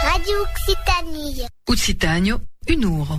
Radio Occitanie. Occitània, un ora.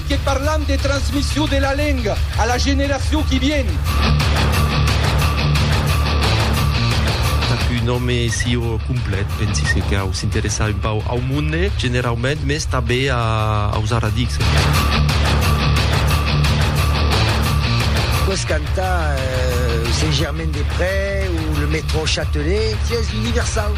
Que parlam de transmission de la lenga a la generacion qui vien. Tap un òme sieu complet, pensi se cau s'interessar un pauc au monde generaument, mès tanbe aus aradics. Pòs cantar Saint-Germain-des-Près o le Metro Châtelet, sies universau.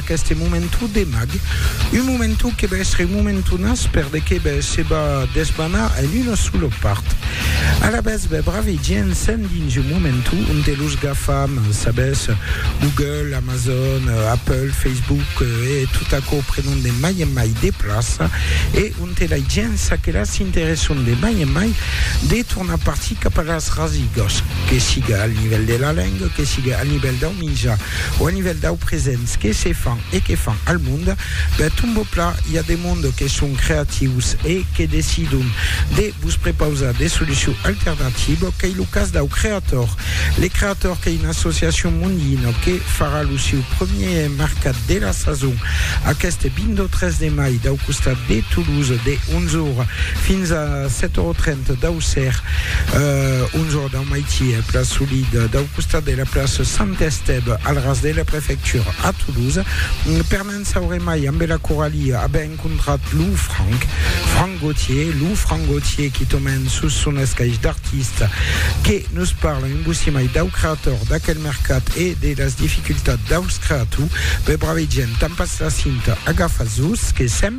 Qu'este momentu de mag, un momentu que va èstre un momentu nas per de que bè se va desbanar en una sola part. Alavetz bè bravi gents sèn dins un momentu onte los gafam, sabètz, Google, Amazon, Apple, Facebook e tot aquò prenon de mai en mai de plaça e onte lai gents a que la s'interesson de mai en mai de tornar partir cap a las rasigas, que siga al nivèl de la lenga, que siga al nivèl dau Minja, o a nivèl dau presents que se fan e que fan al mond, per ton bò pla, i a de mond que son creatius e que decidon de vos prepausar de solucion alternativa, qu'ei lo cas dau Creator. Le Creator qu'ei una associacion mondina que farà lo seu premier mercat de la sason aqueste 23 de mai dau costat de Toulouse de 11 ora fins a 7 ora 30 dau ser, 11 ora dau Au Maitier, place Solide, dau costat de la place Saint-Estève, al ras de la prefectura, a Toulouse. Per ne'n saure mai, ambe la Coralie a ben encontrat lo Franck, Franck Gautier, lo Franck Gautier qui tomen sus son escaish d'artiste, que nos parla un bocí mai dau creator, d'aquel mercat e de las dificultats daus creatou. Be, brave gent, tampatz la cinta, agafatz-vos, que sèm.